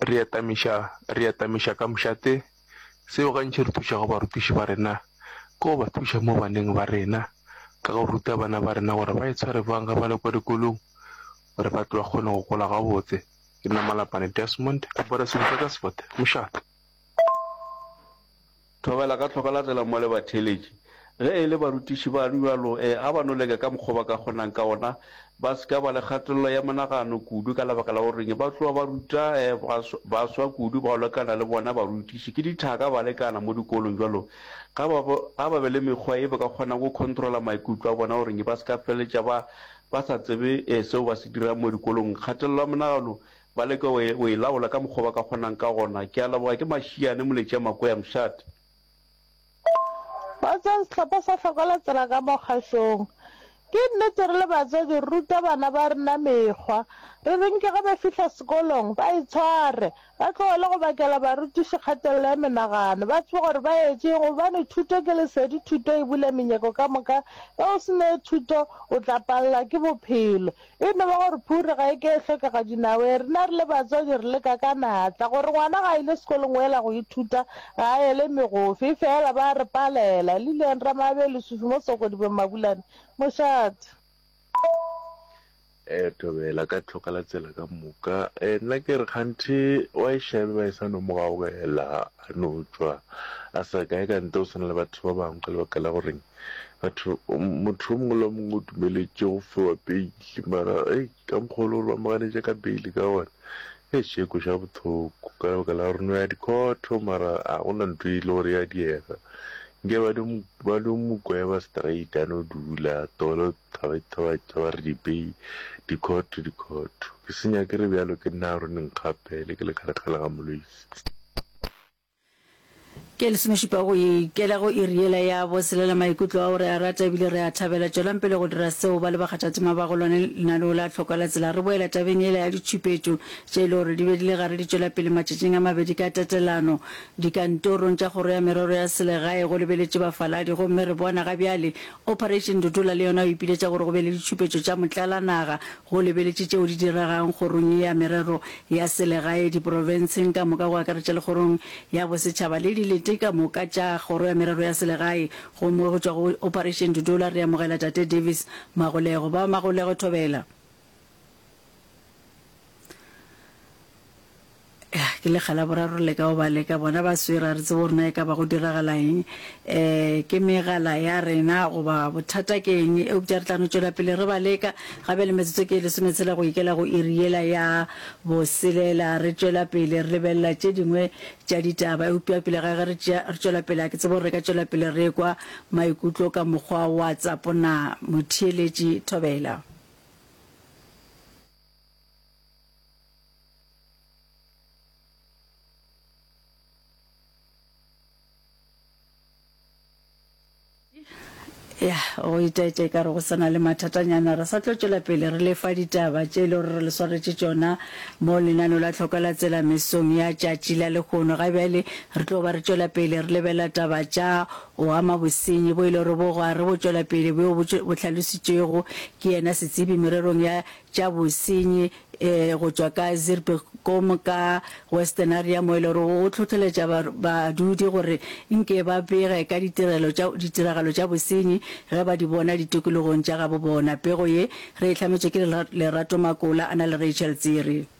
Re atamiša, re atamiša ka mošate. Seo gantši re thušago barutiši ba rena ke go ba thuša mo baneng ba rena ka go ruta bana ba rena gore ba itshware bjang ge ba le kwa dikolong gore ba tle ba kgone go gola gabotse. Ke nna Malapane Desmond, Apara Sehuta ka Sefate, Mošate. Thobela ka tlhoka la tsela mo le ba theletše. Ge e le barutiši ba rua lo e a ba no leka ka mokgwa ba ka kgonang ka ona ba se ka ba le kgatelelo ya monagano kudu ka lebaka la goreng ba tloga ba ruta baswa kudu bao lekana le bona barutiši ke dithaka ba lekana mo dikolong jwalo ga ba ga ba be le mekgwa e ba ka kgonang go controla maikutlo a bona goreng ba se ka feletša ba ba sa tsebe seo ba se dirang mo dikolong kgatelelo ya monagano Ba leke go e, go e laola ka mokgwa ba ka kgonang ka gona. Ke a leboga, ke mašiane, Moletšea Makwea, Mšate. Ba tswang sehlopha sa Hlokola Tsela ka mo kgašong. Ke nnete re le batswadi re ruta bana ba rena mekgwa. Re reng ke ge ba fihla sekolong ba e tshware, ba tlogele go bakela barutiši kgatelelo ya menagano, ba tsebe gore ba etšeng gobane thuto ke lesedi, thuto e bula menyeko ka moka, ge o se ne thuto o tla pallwa ke bophelo. E no ba gore phuri ga e ke e hlokega dinaweng. Rena re le batswadi re leka ka natla gore ngwana ga a ile sekolong o ela go ithuta, ga a ele megofe. Efeela ba a re palela. Lillian Ramaabee, Lesufi mo Sokodibeng, Mabulane, Mošate. Ee, thobela ka tlhoka la tsela ka moka. Ee, nna ke re kganthe wa e šabe ba e sa no mo gaogela, a no tšwa a sa kae ka ntle go swana le batho ba bangwe ka lebaka la goreng Batho, motho yo mongwe le yo mongwe o dumeletše go fiwa beili, mara hei, ka mokgwa o le gore ba mo ganetša ka beili ka gona, hei, xe e kweša bohloko, ka lebaka la gore no ya dikhotho, mara ga gona ntho e le gore ya diega, nke ba no, ba no mo gweba straight, a no dula, tolo thaba ithabatša, ba re dibeili, dikhotho, dikhotho, ke se nyake re bjalo, ke nna Aaron Nkgapele, ke le kgalekgale ga Moloisi. Ke lesomešupa go ikela go iri yela ya boselela maikutlo ao re a rata ebile re a thabela. Tšwelang pele go dira seo ba le bakgathatema ba go lone lenaneo la tlhokwa la tsela. Re boela tabeng yela ya ditšhupetšo tše e le gore di be di le gare di tšwela pele matšatšing a mabedi ka tatelano dikantorong tša kgoro ya merero ya selegae go lebeletše bafaladi gomme re bona ga bjale Operation Ndutola le yona o ipiletša gore go be le ditšhupetšo tša motlalanaga Go lebeletše tšeo di diregang Kgorong ya Merero ya Selegae, diprofenseng ka moka go akaretša le Kgorong ya Bosetšhaba le dilete ka moka tša Kgoro ya Merero ya Selegae, gomme go tšwa go Operation Dudola re amogela Tate Davis Magolego. Ba Magolego, thobela. Ah, ke lekga la boraro le ka o ba leka bona ba swere a re tsebo rena e ka ba go diragala eng eh ke megala ya rena goba bothata ke eng eupša re tla no tšwela pele re ba leka gabe le metsotso ke e lesometshela go ikela go iri yela ya boselela re tšwela pele re lebelela tše dingwe tša ditaba eupša pele ga ge re tšea- re tšwela pele a ke tsebo re ka tšwela pele re kwa maikutlo ka mokgwa wa tsapona motheeletši thobela ya go itaetša e ka re go sana le mathatanyana re sa tlo tšwela pele re lefa ditaba tše e le gore re le swaretše tšona mo lenano la tlhoka la tsela mesong ya tšatši la lekgono ga bjale re tlo ba re tšwela pele re lebela taba tša o ama bosenyi bo e le gore bo gwa re bo tšwela pele bo bo hlalositšwego ke yena setsebi mererong ya tša bosenyi e, go tšwa ka Zirbekom ka Western Area mo e le gore o tlhotlheletša badudi gore nke ba bege ka ditiragalo tša bosenyi ge ba di bona ditokologong tša gabo bona. Pego ye re e hlametšwe ke Lerato Makola a na le Rachel Tsiri.